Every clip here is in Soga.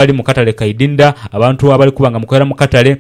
abali mu katale ka idinda, abantu abali kuba nga mukolera mu katale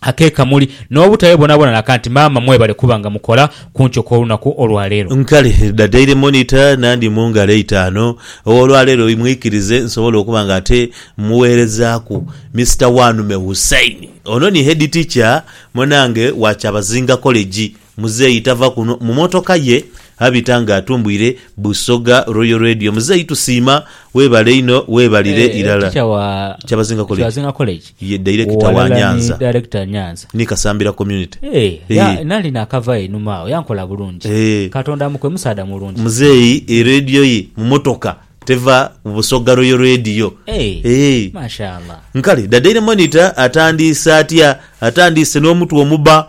ak'e Kamuli, n'obutabe boonaboona na kanti. Maama mwebale kuba nga mukola ku nkyo kw'olunaku olwa leero. Nkale dha Daily Monitor na ndi mu ngalo eitaanu. Ow'olwaleero imwikirize nsobole okuba nga ate mmuweerezaaku Mister Wanume Hussein. Ono ni Head Teacher munange wa Kyabazinga College. Muzeeyi tava kuno mu motoka ye abita nga atumbwire Busoga Royal Radio. Muzeeyi tusiima, weebale inho, weebalire Eh, irala. teacher wa Kyabazinga College. Kyabazinga College. Ye director wa Walala ni Nyanza. director Nyanza. Ni Kasambira Community. Eh, ya- Eh. nali nakava einhuma agho yankola bulungi Eh. katonda amukwe musaadha mulungi Muzeeyi e radio ye mu motoka teva ku Busoga Royal Radio. Eh, Eh. mashallah Nkale dada ire monitor atandiise atya? Atandiise n'omutwe omuba.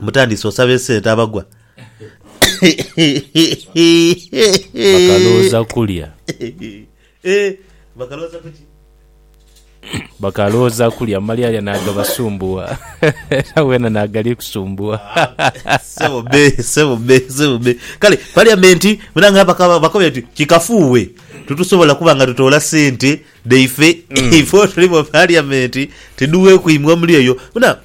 Mutandise osaba esente abagwa. Bakalowoza kulya. Bakalowoza kuki? Bakalowoza kulya male alya nagabasumbuwa era wena nagali kusumbuwa. Sebo me, sebo me, sebo me. Kale parliament munange bakaba bakobye ati kikafuuwe tutusobola kuba nga tutoola sente dhaife ife otuli mu parliament tidhuwe kwimwa omuli eyo. Muna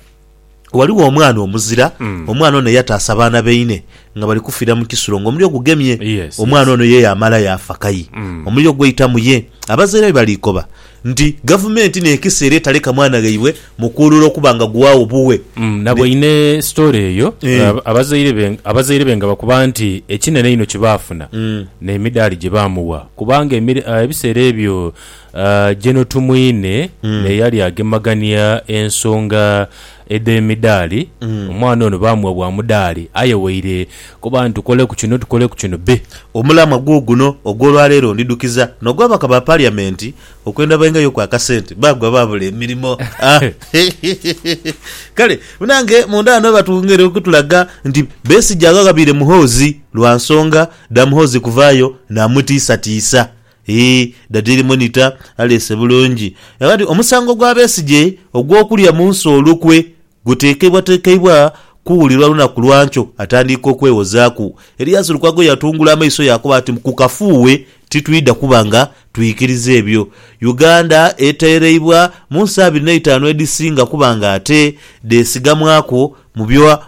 Ghaligho omwana omuzira, omwana ono eyataasa abaana baine nga bali kufiira mu kisulo ng'omuliro gugemye. Yes, Omwana yes. ono ye yaamala yaafa kayi omuliro gwaita mu ye. Abazaire be bali koba nti Gavumenti n'ekisa era etaleka mwana ghaibwe mukuulura okuba nga guwaagho buwe. Mm, na bweine story eyo Eh. ab- abazaire be abazaire be nga bakoba nti ekinene einho kye baafuna n'emidaali gye baamuwa kubanga emir- ah, ebiseera ebyo Jeno Tumwine naye yali agemagania ensonga edh'emidaali. Omwana ono baamuwa bwa mudaali aye waire kuba nti tukoleku kino tukoleku kino be. Omulamwa guuguno ogw'olwaleero ndidhukiza n'ogw'ababaka ba Paliyamenti okwenda baingayo ku akasente baagwa baabula emirimo. Kale munange munda ghano batwongere okutulaga nti Besigye aghaghabiire Muhoozi lwa nsonga dha Muhoozi kuvaayo naamutiisatiisa. Hii, Dadiili Monitor aleese bulungi era nti omusango gwa Besigye ogw'okulya mu nsi olukwe gutekeibwatekeibwa kuwulirwa lunaku lwa nkyo. Atandiika okwewozaaku, Erias Lukwago yatungula amaiso yaakoba ati, Ku kafuuwe titwidha kuba nga twikiriza ebyo. Uganda eteereibwa mu nsi abiri n'eitaanu edhisinga kuba ng'ate dheesigamwaku mu byo.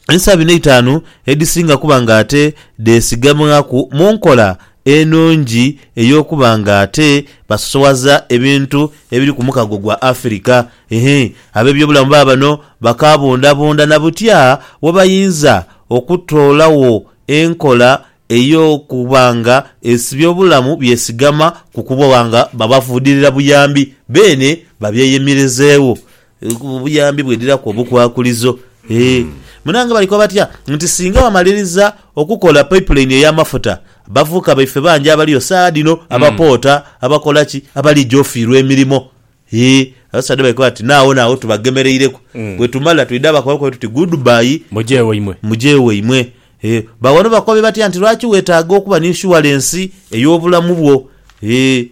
Ensa bino eitaanu edhisinga kuba nga ate dheesigamwaku mu nkola enungi ey'okuba nga ate basosowaza ebintu ebiri ku mukago gwa Afirika. Hii, ab'ebyobulamu baba bano bakaabundabunda na butya we bayinza okutoolagho enkola ey'okuba nga ebyobulamu byesigama ku kuba nga babafuudirira buyambi beene babyeyemerezeegho. Obuyambi bwedhiraku obukwakulizo. Eeh munange bali koba batya nti singa bamaliriza okukola pipeline ey'amafuta abavubuka baife bangi abaliyo saagha dhino abapoota, abakola ki, abalija ofiirwa emirimo. Eeh abasaadha bali koba bati naagho naagho tubagemereireku bwetumala twidha bakobe bakobe tuti good bye, Muje waimwe. muje waimwe. Eeh ba wano bakobe batya nti lwaki weetaaga okuba ni inshuwalensi ey'obulamu bwo. Eeh.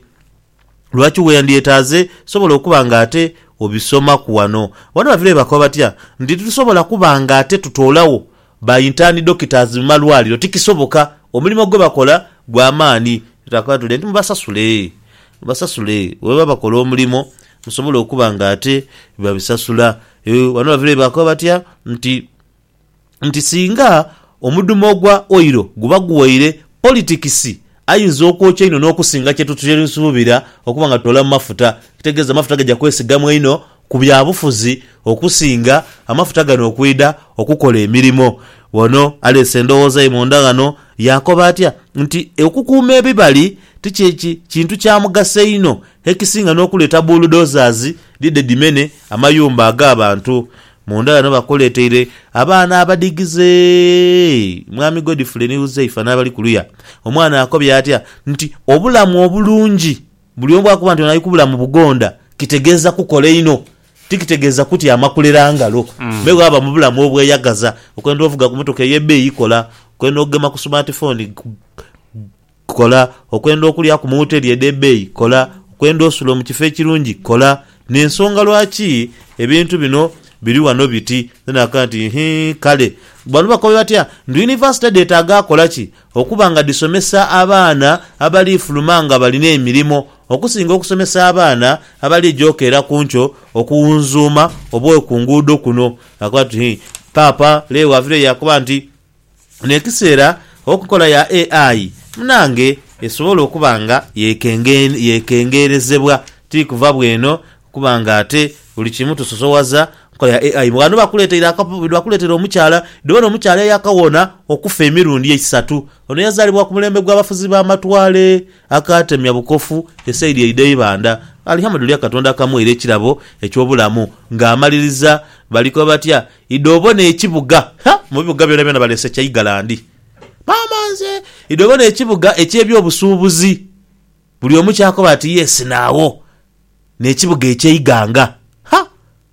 Lwaki weyandyetaaze sobola okuba nga ate obisomaku wano. Wano bavireyo bakoba batya nti titusobola kuba nga ate tutoolawo ba intern doctors mu malwaliro. Tikisoboka. Omulimo gwe bakola gwa maani. Twakabatuule nti mubasasule. Mubasasule bwebaba bakola omulimo musobole okuba nga ate babisasula. Wano bavireyo bakoba batya nti nti singa omudhumo ogwa oilo guba guwaire, politikisi ayinza okwokya inho n'okusinga kye tusuubira okuba nga tutoolamu mafuta. Ekitegeeza amafuta gaja kwesigamwa inho ku byabufuzi okusinga amafuta gano okwidha okukola emirimo. Ono aleese endowooza ye munda ghano yaakoba atya nti okukuuma ebibali ti kye kintu kya mugaso inho ekisinga n'okuleeta bulldozers dhidhe dhimene amayumba ag'abantu. Munda ghano bakoleteire abaana abadigize Mwami Godfrey ni Huzaifa n'abali kuluya. Omwana akobye atya nti obulamu obulungi buli omu bw'akoba nti ono ali ku bulamu bugonda kitegeeza kukola inho, ti kitegeeza kutyama kulera ngalo. Me bw'aba mu bulamu obweyagaza, okwenda ovuga ku motoka ey'ebbeeyi kola, okwenda okugema ku sumaati fooni, Kola, okwenda okulya ku mu woteri edh'ebeeyi? Kola, okwenda osula omu kifo ekirungi? Kola. N'ensonga lwaki ebintu bino biri wano biti. Then akaba nti, Hii, kale. Bano bakobe batya? Nti yunivasite dheetaaga akola ki? Okuba nga dhisomesa abaana abali fuluma nga balina emirimo, okusinga okusomesa abaana abali gyoka era ku nkyo okuwunzuuma obwoyo ku nguudo kuno. Akaba nti, Hii, Paapa Leo wa vire yakoba nti. n'ekiseera enkola ya AI munange esobola okuba nga yekengerezebwa ti kuva bw'eno kuba nga ate buli kimu tusosowaza nkola ya AI. Ghano bakuleteire omukyala, dhibona omukyala eyakawona okufa emirundi eisatu. Ono yazaalibwa ku mulembe gw'abafuzi b'amatwale akaatemya bukofu esaidi eidha Ibanda. Alihamuduliya Katonda akamweire ekirabo eky'obulamu ng'amaliriza bali koba batya Idho obone ekibuga, ha, mu bibuga byonabyona baleese kya Igalandi. Maama nze! Idho obone ekibuga eky'eby'obusuubuzi. Buli omu ky'akoba ati, Yes, naagho. N'ekibuga ekya Iganga. Ha!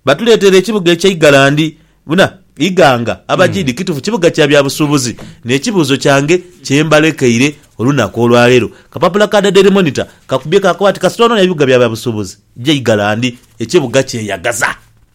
Batuleeteire ekibuga ekya Igalandi. Buna, Iganga, Abajidi, kitufu kibuga kya bya busuubuzi. N'ekibuuzo kyange kye mbalekeire olunaku olwa leero, kapapula ka The Daily Monitor kakubye kaakoba ati, Kasita onoonia bibuga bya bya busuubuzi, ja Igalandi, ekibuga kyeyagaza.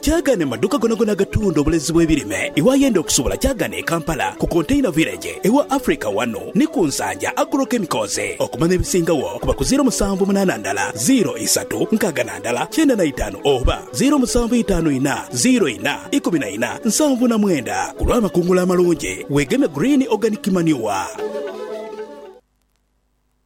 Kyagane mu maduuka gonagona agatunda obulezi bw'ebirime. Iwayenda okusubula kyagane e Kampala ku Container Village ewa Africa wanu ni ku Nsanja Agro Chemicals. Okumanya ebisingagho kuba ku ziiro musanvu munaana ndala ziiro isatu nkaaga na ndala kyenda na itaanu oba ziiro musanvu itaanu ina ziiro ina ikumi na ina nsanvu na mwenda. Ku lw'amakungula amalungi weegemye Green Organic Manure.